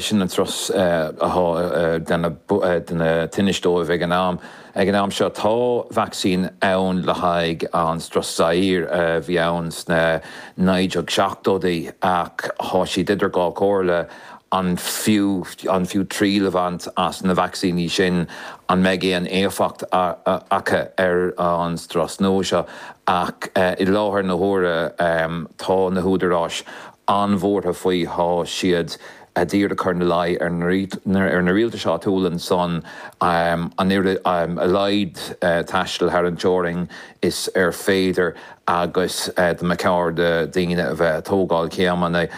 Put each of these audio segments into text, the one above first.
Sin an strus atá ag déanamh tinnis dóibh ag an am. Ag an am seo tá vacsaín ann le haghaidh an strus Zaire a bhí ann sna 1970idí ach tá siad idir dhá chomhairle, an fiú an fiú triail a bhaint as na vacsaíní sin, an mbeidh aon éifeacht acu ar an strus nua seo? Ach i láthair na huaire tá na húdaráis an-bhuartha faoi thá siad ag iarraidh a chur ina luí ar na rialtais áitiúla ansan, an oiread a laghad taistil thar an teorainn is féidir agus de mhacalla daoine a bheith ag tógáil céimeanna,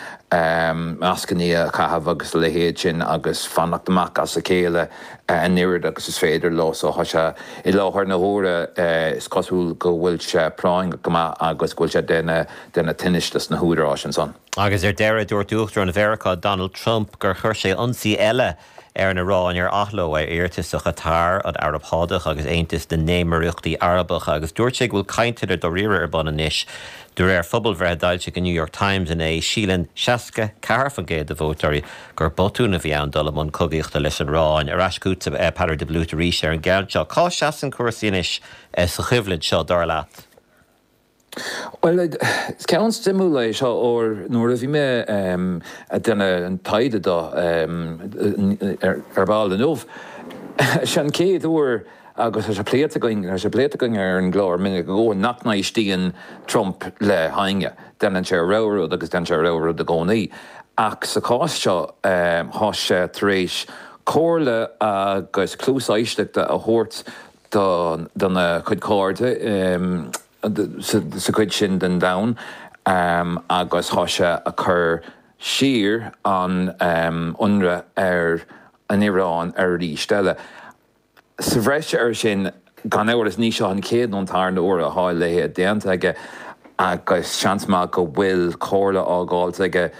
mascanna a chaitheamh agus a leithéid sin agus fanacht amach as a chéile an oiread agus is féidir leo. So tá sé i láthair na huaire, is cosúil go bhfuil sé práinneach go maith agus go bhfuil sé ag déanamh. déanamh tinnis dos na húdaráis ansan. Agus ar deireadh, dúirt Uachtarán Mheiriceá Donald Trump gur chuir sé ionsaí eile ar an Iráin ar athló ar iarratas ó Chatar, an Araib Shádach agus Aontas na nÉimíríochtaí Arabacha agus dúirt sé go bhfuil cainteanna dáiríre ar bun anois. De réir phobalbhreith a d'fhoilsigh an New York Times inné, síleann 64% de vótóirí gur botún a bhí ann dul i mbun cogaíochta leis an Iráin. Ar ais chugat, a Pheadair de Blúit arís ar an gceann seo. Cá seasann cúrsaí anois sa choimhlint seo, dar leat? Bhuel, is ceann suimiúil é seo ar nuair a bhí mé ag déanamh an taighde dó ar ball inniu, is é an chéad uair agus tá sé pléite againn, tá sé pléite againn ar an gclár minic go leor nach n-éistíonn Trump le héinne, déanann sé a rogha rud agus déanann sé a rogha rud i gcónaí. Ach sa chás seo, tá sé tar éis comhairle agus cluas éisteachta a thabhairt dona cuid cairde sa chuid sin den domhan agus thá sé ag cur siar an ionradh ar an Iráin aríst eile. Sa bhreis ar sin, gan amhras, ní seo é an chéad nó an tarna uair atá a leithéid déanta aige agus seans maith go bhfuil comhairle fáilte aige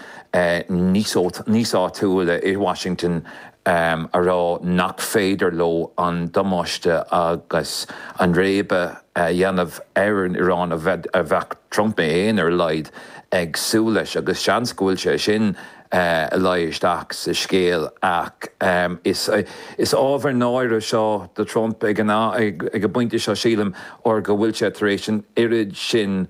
níos áitiúla i Washington um a rá nach féidir leo an damáiste agus an réabadh a dhéanamh ar an Iráin a bheadh Trump é fhéin, ar a laghad, ag súil leis, agus seans go bhfuil sé sin ag luí isteach sa scéal, ach um is ábhar náire seo do Trump ag an am, ag an bpointe seo sílim, ar go bhfuil sé tar éis an oiread sin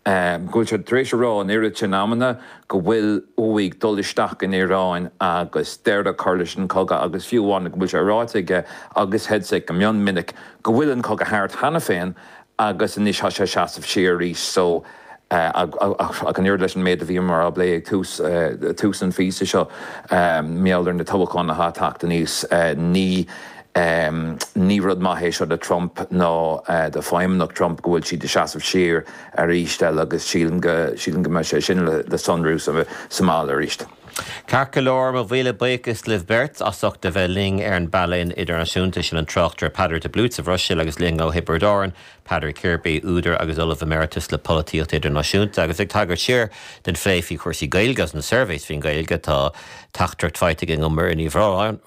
go bhfuil sé tar éis a rá an oiread sin amanna go bhfuil uaidh dul isteach san Iaráin agus deireadh a chur leis an chogadh agus fiú amháin go bhfuil sé ráite aige agus Hegseth go mion minic go bhfuil an cogadh thart cheana féin agus anois tá sé ag seasamh siar arís so ach an oiread leis an méid a bhíomar ag plé ag tús tús an phíosa seo mar gheall ar na toghcháin atá ag teacht aníos ní Ní rud maith é seo do Trump ná do fheidhmeannacht Trump go bhfuil siad ag seasamh siar arís eile, agus sílim go mbeidh sé sin le sonrú sa mbaile arís. Ceart go leor, mo mhíle buíochas libh beirt as ucht a bheith linn ar an bpainéal idirnáisiúnta. Sin an tráchtaire Peadar de Bluit sa Bhruiséil agus linn ó Thiobraid Árann, Peadar Kirby, údar agus Ollamh Emeritus le Polaitíocht Idirnáisiúnta. Agus ag tagairt siar den phlé faoi chúrsaí Gaeilge agus na surveys faoin Ghaeilge, tá teachtaireacht faighte againn ó Mhuireann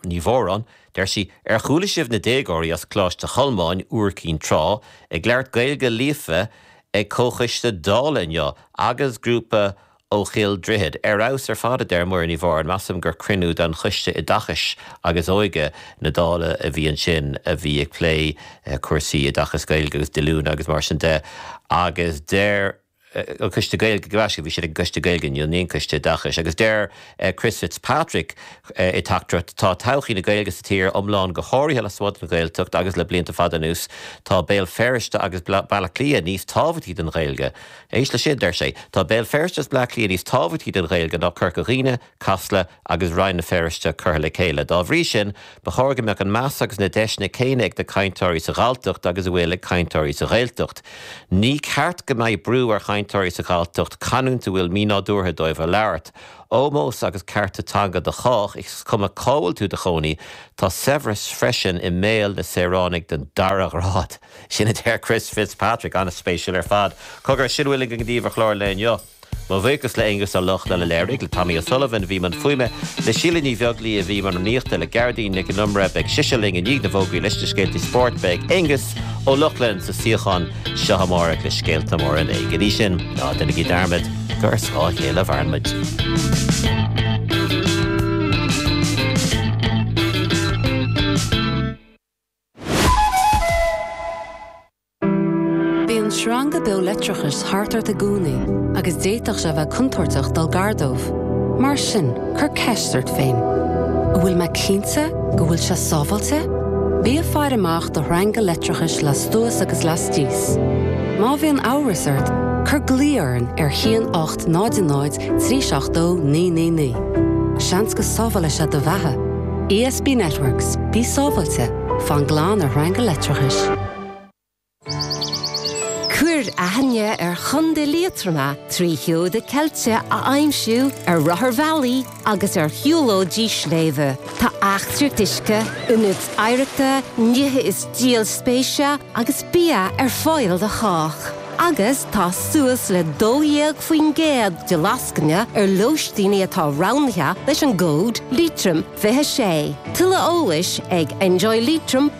Ní Mhóráin, Deir sí, Ar chuala sibh na déagóirí as Coláiste Cholmáin, Iúr Cinn Trá, ag labhairt Gaeilge líofa ag comhchoiste Dála inniu? Agus grúpa ó Chill Droichid. Ar fheabhas ar fad, a deir Muireann Ní Mhóráin, measaim gur cruinniú de Choiste Oideachais agus Óige na Dála a bhí ansin a bhí ag plé cúrsaí oideachais Gaeilge agus díolúine agus mar sin de. Agus deir. an Coiste Gaeilge go raibh siad, bhí siad ag an gCoiste Gaeilge inniu, ní an Coiste Oideachais, agus deir Chris Fitzpatrick i dteachtaireacht, Tá todhchaí na Gaeilge sa tír iomlán go háirithe lasmuigh den Ghaeltacht agus le blianta fada anuas tá Béal Feirste agus Baile Átha Cliath níos tábhachtaí don Ghaeilge. Éist leis seo, deir sé, Tá Béal Feirste agus Baile Átha Cliath níos tábhachtaí don Ghaeilge ná Corca Dhuibhne, Casla agus Rann na Feirste curtha le chéile. Dá bhrí sin, ba chóir go mbeadh an meas agus na deiseanna céanna ag na cainteoirí sa Ghalltacht agus a bhfuil ag cainteoirí sa Ghaeltacht. Ní ceart go mbeidh brú ar chainteoirí sa Ghalltacht canúint a bhfuil mínádúrtha dóibh a labhairt. Ómós agus cearta teanga do chách, is cuma cá bhfuil tú 'do chónaí. Tá saibhreas freisin i mbéal na saoránaigh den dara ghrád. Sin a deir Chris Fitzpatrick. An-spéisiúil ar fad. Cogar, sin a bhfuil againn daoibh ar chlár an lae inniu. Mo bhuíochas le hAonghus Ó Lochlainn a léirigh, le Tommy O'Sullivan a bhí i mbun fuaime, le Síle Ní Bheaglaoí a bhí i mbun nuachta, le Gearoidín Nic an Iomaire, beidh sise linn i ndiaidh na bhfógraí leis na scéaltaí spóirt, beidh Aonghus Ó Lochlainn sa suíochán seo amárach le scéalta móra an lae. Go dtí sin, ná déanaigí dearmad gur ar scáth a chéile a mhaireann muid. Bíonn sreanga beo leictreachais thart ort i gcónaí agus d'fhéadfadh sé a bheith contúirteach dul gar dóibh. Mar sin, cuir ceist ort féin, An bhfuil mé cinnte go bhfuil sé sábháilte? Bí ag faire amach do shreanga leictreachais lastuas agus lastios. Má bhíonn amhras ort, cuir glao orainn ar 1800 370 999. Seans go sábhálfaidh sé do bheatha! ESB Networks, Bí sábháilte, fan glan ar shreanga leictreachais. Cuir aithne ar Chontae Liatroma trí sheoda ceilte a aimsiú ar rotharbhealaí agus ar shiúlóidí sléibhe. Tá eachtraí uisce, ionaid oidhreachta, nithe is díol spéise agus bia ar fáil do chách. Agus tá suas le 12% de lascaine ar lóistíní atá roghnaithe leis an gcód Leitrim26. Tuilleadh eolais ag enjoyleitrim.ie.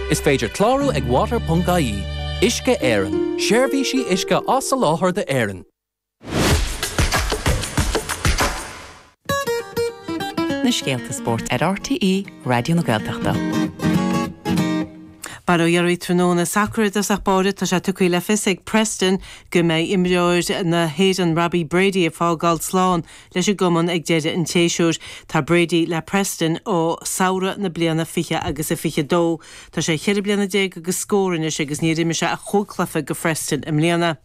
Is féidir clárú ag water.ie, Uisce Éireann, seirbhísí uisce á soláthar d'Éirinn. na scéalta spóirt ar RTÉ Raidió na Gaeltachta. Bail ó Dhia oraibh tráthnóna sacar i dtosach báire. Tá sé tugtha le fios ag Preston go mbeidh imreoir na hÉireann Robbie Brady ag fágáil slán leis an gcumann ag deireadh an tséasúir. Tá Brady le Preston ó samhradh na bliana fiche agus a fiche dó. Tá sé cheithre bliana déag agus scór anois agus níor imir sé ach chúig chluiche go Phreston i mbliana.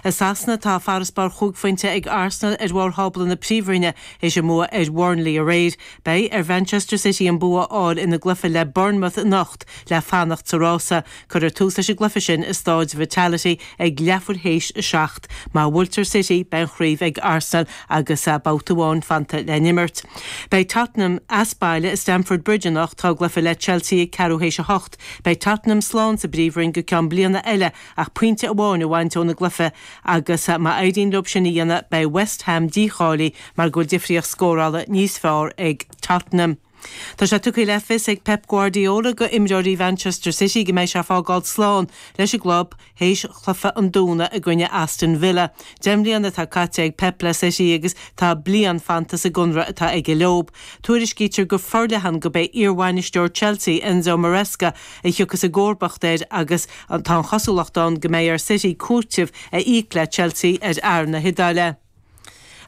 I Sasana, tá farasbarr chúig phointe ag Arsenal ar bharr thábla na Príomhroinne théis a mbua ar Bhurnley aréir. Beidh ar Mhanchester City an bua a fháil ina gcluiche le Bournemouth anocht le fanacht sa rása Cuirfear tús leis an gcluiche sin i Stáid Vitality ag leathuair théis a seacht. Má bhuailtear City, beidh an chraobh ag Arsenal agus babhta amháin fanta le n-imirt. Beidh Tottenham as baile i Stamford Bridge anocht, dá gcluiche le Chelsea ag ceathrú théis a hocht. Beidh Tottenham slán sa bPríomhroinn go ceann bliana eile ach pointe amháin a bhaint óna gcluiche agus má éiríonn leo sin a dhéanamh, beidh West Ham dícháilí mar go bhfuil difríocht scórála níos fearr ag Tottenham. Tá sé tugtha le fios ag Pep Guardiola go imreoirí Mhanchester City go mbeidh sé ag fágáil slán leis an gclub théis chluiche an Domhnaigh i gcoinne Aston Villa. Deich mbliana atá caite ag Pep le City agus tá bliain fanta sa gconradh atá aige leo. Tuairiscítear go forleathan gurb é iarbhainisteoir Chelsea, Enzo Maresca, a thiocfas i gcomharbacht air agus tá an chosúlacht ann go mbeidh ar City cúiteamh a íoc le Chelsea ar fhear na hIodáile.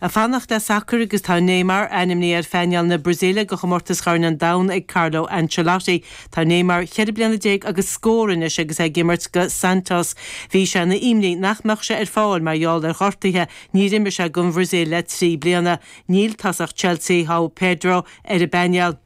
Ag fanacht le sacar agus tá Neymar ainmnithe ar phainéal na Brasaíle do chomórtas Chorn an Domhain ag Carlo Ancelotti. Tá Neymar ceithre bliana déag agus scór anois agus é ag imirt do Santos. Bhí sé ina imní nach mbeadh sé ar fáil mar gheall ar ghortuithe, níor imir sé don Bhrasaíl le trí bliana. Níl tosach Chelsea, Joao Pedro, ar an bpainéal.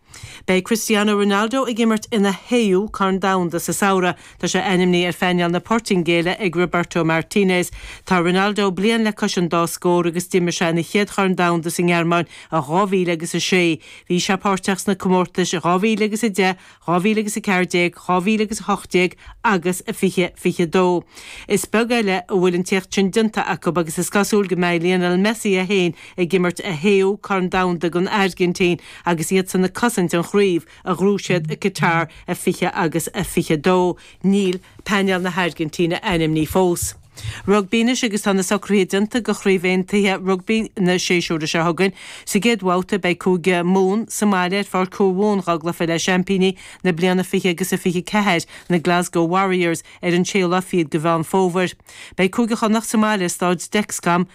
Beidh Cristiano Ronaldo ag imirt ina shéú Corn Domhanda sa samhradh. Tá sé ainmnithe ar phainéal na Portaingéile ag Roberto Martinez. Tá Ronaldo bliain le cois an dá scór agus d'imir sé ina chéad Chorn Domhanda sa nGearmáin in dhá mhíle agus a sé. Bhí sé páirteach sna comórtais in dhá mhíle agus a deich, dhá mhíle agus a ceathair déag, dhá mhíle agus a hocht déag agus a fiche fiche a dó. Is beag eile a bhfuil an t-éacht sin déanta acu agus is cosúil go mbeidh Lionel Messi é féin ag imirt a shéú Corn Domhanda don Airgintín agus iadsan ag cosaint an chraobh a ghnóthaigh siad i Qatar a 20 agus a 22. Níl painéal na hAirgintíne ainmnithe fós. Rugbaí anois agus tá na socruithe déanta do Chraobhchomórtas Aontaithe Rugbaí an tséasúir seo chugainn. Sa gcéad bhabhta beidh Cúige Mumhan sa mbaile ar Pháirc Thuamhumhan i ngleic le seaimpíní na bliana 20 agus a 24, na Glasgow Warriors, ar an 6ú lá fichead de Mheán Fómhair. Beidh Cúige Chonnacht sa mbaile ar Stáid Dexcom